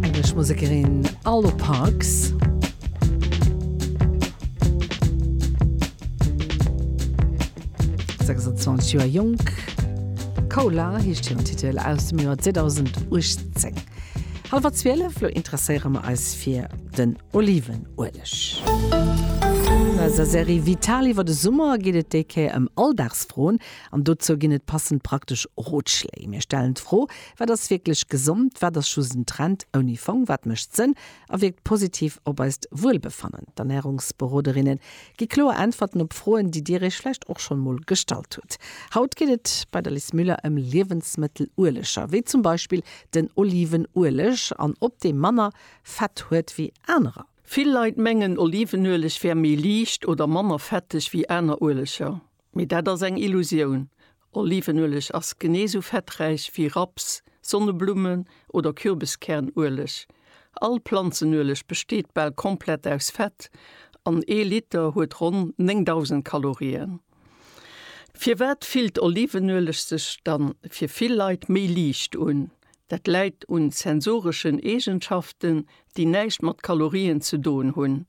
Engelsch Musekerin Arlo Parks. Joer Jonk Cola hicht him Titel aus dem Joer 2008. Halwer 12 lo interesséiere mer eis fir den Olivenueleg. Eiser Serie Vital iwwer de Summer geet et déi Kéier ëm Alldagsfroen an dozou ginn et passend praktesch Rotschléi. Mir stellen d'Fro, Wat ass wierklech gesond, wat ass just en Trend ouni Fong, wat mécht Sënn a wierkt positiv op eist Wuelbefannen? D'Ernärungsberoderinne gi kloer Äntwerten op Froen, déi Dir Iech vläicht och schonn emol gestallt hutt. Haut geet et bei der Liz Müller ëm Liewensmëttelueleger, wéi zum Beispill den Olivenueleg, an ob dee manner Fett huet wéi anerer. Vill Leit mengen, Olivenueleg wär méi liicht oder manner fetteg wéi aner Ueleger. Mee dat ass eng Illusioun. Olivenueleg ass genee sou fetträich wéi Raps, Sonneblummen oder Kürbiskärnueleg. All Planzenueleg besteet bal komplett aus Fett an ee Liter huet ronn 9.000 Kalorien. Firwat fillt Olivenueleg sech dann fir vill Leit méi liicht un? Dat läit un sensoreschen Eegenschaften, déi näischt mat Kalorien ze doen hunn.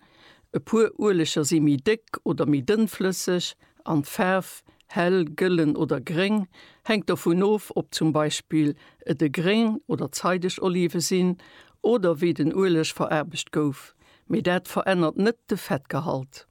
E puer Ueleger si méi déck oder méi dënnflësseg an d'Faarf, hell, gëllen oder gréng, hänkt dovun of, ob zum Beispill et e gréng oder zeideg Olive sinn oder wéi den Ueleg veraarbecht gouf, mee dat verännert net de Fettgehalt.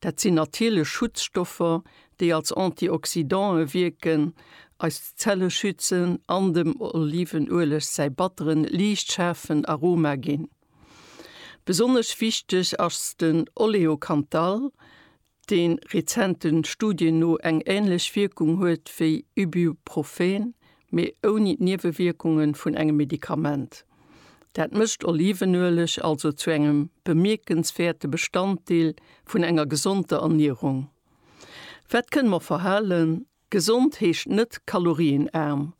Dat sinn natierlech Schutzstoffer, déi als Antioxydantë wierken, eis Zelle schützen an dem Olivenueleg säi batteren, liicht schaarfen Aroma ginn. Besonnesch wichteg ass den Oleocanthal, dee rezente Studien no eng änlech Wierkung huet wéi Ibuprofen, mee ouni d'Niewewierkunge vun engem Medikament. Dat mécht Olivenueleg also zu engem bemierkenswäerte Bestanddeel vun enger gesonder Ernierung. Wat kënne mer verhalen? Gesond heescht net kalorienaarm.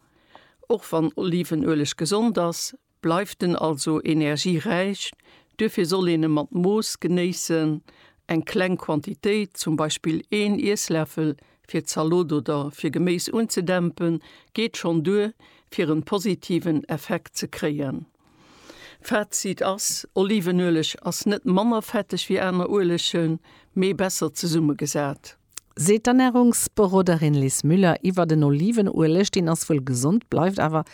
Och wann Olivenueleg gesond ass, bleift en also energieräich. Duerfir soll een e mat Mooss genéissen, eng kleng Quantitéit, zum Beispill een Iessläffel, fir d'Zalot oder fir Geméis unzedämpen, geet schonn duer fir en positiven Effekt ze kréien. Fazit ass, Olivenueleg ass net manner fetteg wéi aner Uelegen, mee besser zesummegesat. Seet d'Ernärungsberoderin Liz Müller iwwer den Olivenueleg, deen ass wuel gesond, bleift awer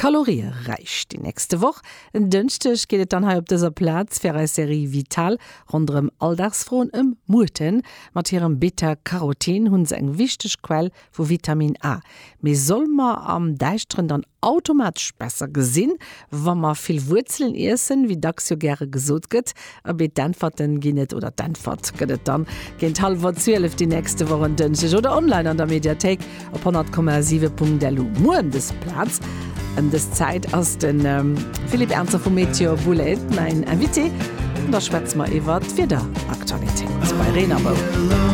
Kalorieräich. Déi nächste Woch, en Dënschdeg, geet et dann hei op dëser Plaz fir eis Serie Vital ronderëm Alldagsfroen ëm Muerten. Mat hirem Beta-Carotin hu se eng wichteg Quell vu Vitamin A. Mee solle mer am Däischteren dann automatesch besser gesinn, wa mer vill Wuerzelen iessen, wéi dacks jo gäre gesot gëtt? Abee, d'Äntwerten ginn et, oder d'Äntwert gëtt et dann géint hallwer 12 déi nächste Woch en Dënschdeg oder online an der Mediathéik op 100,7.lu. Muer ëm dës Plaz, ëm dës Zäit ass de Philippe Ernzer vu Météo Boulaide mäin Invité an da schwätze mer iwwert d'Wiederaktualitéit bei Reen a Rou.